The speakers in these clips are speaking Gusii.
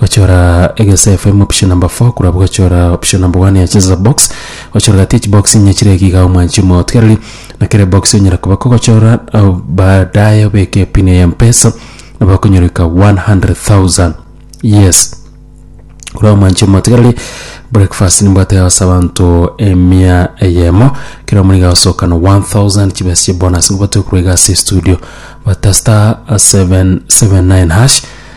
Gochora egesa FM option number 4 korwa abwo gochora option number 1 ya cheza box gochora gati echi box inye chire iga iga omwanchi omotigareri na kere box onyara koba kogochora au baadaye obeke epin ya mpesa nabo okonyoreka 100000 yes korwa omwanchi omotigareri breakfast nimbwate yagose abanto emia eyemo kera omonto iga agosokana 1000 chibesa chie bonus nigo batoe korwa iga ase estudio bata star 779 hash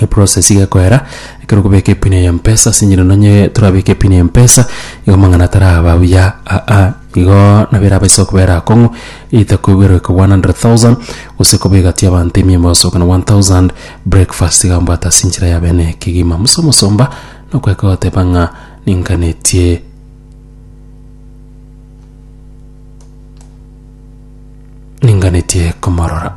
Eprocess iga ekoera, ekero okobeka epin ya mpesa ase eng'encho nonye torabeke epin ya mpesa, igo amang'ana taraba buya aa, igo nabo erabe ase okobera akong'u, either koiberwa eke one hundred thousand, gose koba egati y'abanto emiya gose okona one thousand, breakfast iga mbwate ase enchera ya bene ekegima. Musa omosomba nokoeka goteba ng'a ninganetie. Ninganetie komorora.